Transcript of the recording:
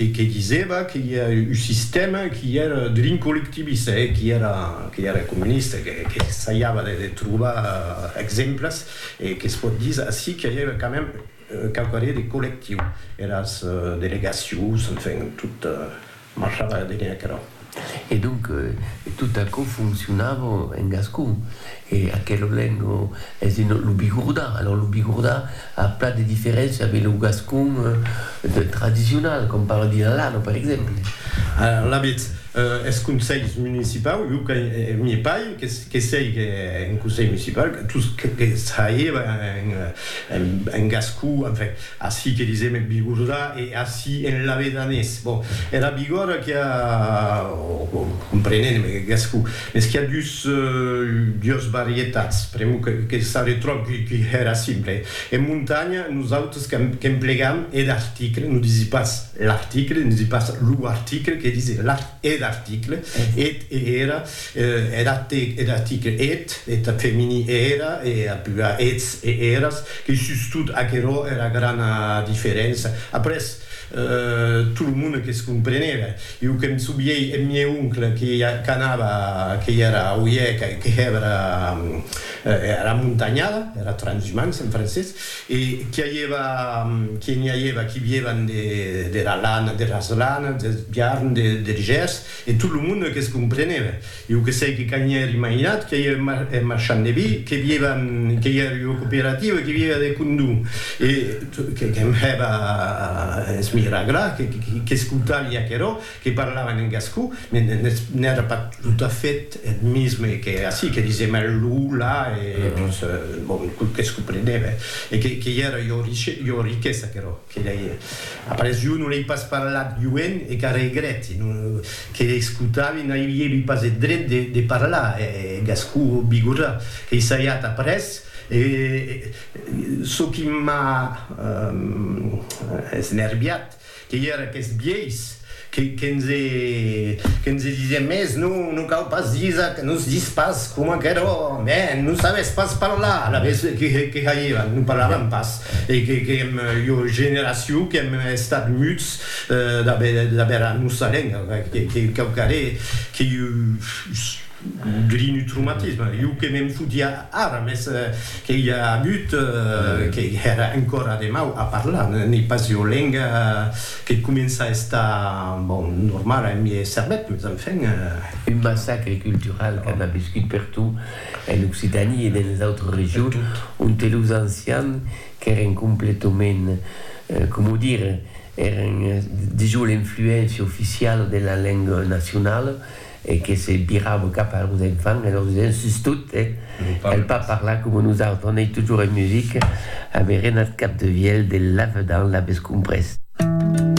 e que disèva que i a un sistèma qui èra drin collectivista e qui èra qui èra comunista, que qu'essaiava de de trobar exemples e que's pòt dire ací que i a quand même quauquarrir de collectiu, eras delegacions, enfin, tot marchava de bèn aquerò. E donc, tot aquò foncionava en gascon. E aquela lenga es de lo bigordà. Alòs, lo bigordà a plan de diferéncia de lo gascon tradicional, qu'òm parla de l'alano, per exemple. Alavetz, es conselhs municipaus, jo que n'i è pas, que sièg en conselh municipal, tot ce que saiba en gascon, enfin, Ací que disèm eth bigordà e ací en lavedanés. Bon, era bigòrda qu'i a, o comprenent en gascon, mès qu'i a dus, dues varietats, pr'amor que s'arretròb qui hèra simple. En montanha, nosautres qu'emplegam eth article, non disi pas l'article, disi pas lo article, que disi l'article. Eth article eth e era, er article eth, eth femini e era, e ath plural eths e eras, qu'ei sustot aquerò era grana diferença. Après, tot lo monde que's compreneve. Jo que me souviei eth miei oncle que qu'anava, que i era a Oièc, que hèva era montanhada, era transhumança en francés, E qu'i aièva, qu'i n'i aièva qui vièvan de, dera lana, de las lanas, deth biarn, de, der gèrs, e tot lo monde que's comprenève. Jo que sei que qu'a n'i èr imaginat qu'i aièva eth, eth marchand de vi, que vièvan, que i èr ua cooperativa, que vièva de condó, e que'm hèva a esmiraglar, que, que'scoutavi aquerò, que parlavan en gascon, mais n'èra pas tot a fait eth misme que ací, que disèm eth lo, la, e dons, bon, tot que's comprenève, e que i èra ua riquesa aquerò, que lei, a parés jo non lei pas parlat joen e qu'a regret, e non, que escotavi n'aviévi pas eth dret de parlar eth gascon bigorrà, qu'ei saiat après, e çò qui m'a esnerviat, Que i era qu'es biais, que nse disién mes, non, non cau pas disar que nos dis pas coma qu'eró, mè nos sabés pas parlar, alavetz que jairàn, non parlaràn pas, e que èm ua generacion qu'èm estat muts d'aver era nosa lenga, que cau caré que Grinutrumatisme, jo que me'n fotia ara, mès que i a agut, que èra encòra de mau a parlar, n'ei pas ua lenga que comença a estar, bon, normala en miei cervèth, mès enfin. Un massacre cultural qu'an aviscut pertot en Occitanie e denes autres regions, onte los ancians qu'èren completament, coma dire, èren dejós l'influéncia oficiala de la lenga nacionala, e que se virava cap a los enfants e lor disen, sustot, el pas parlar coma nosautres, on ei totjorn musica, averen ath cap de vielh de lavedan, l'avés comprés.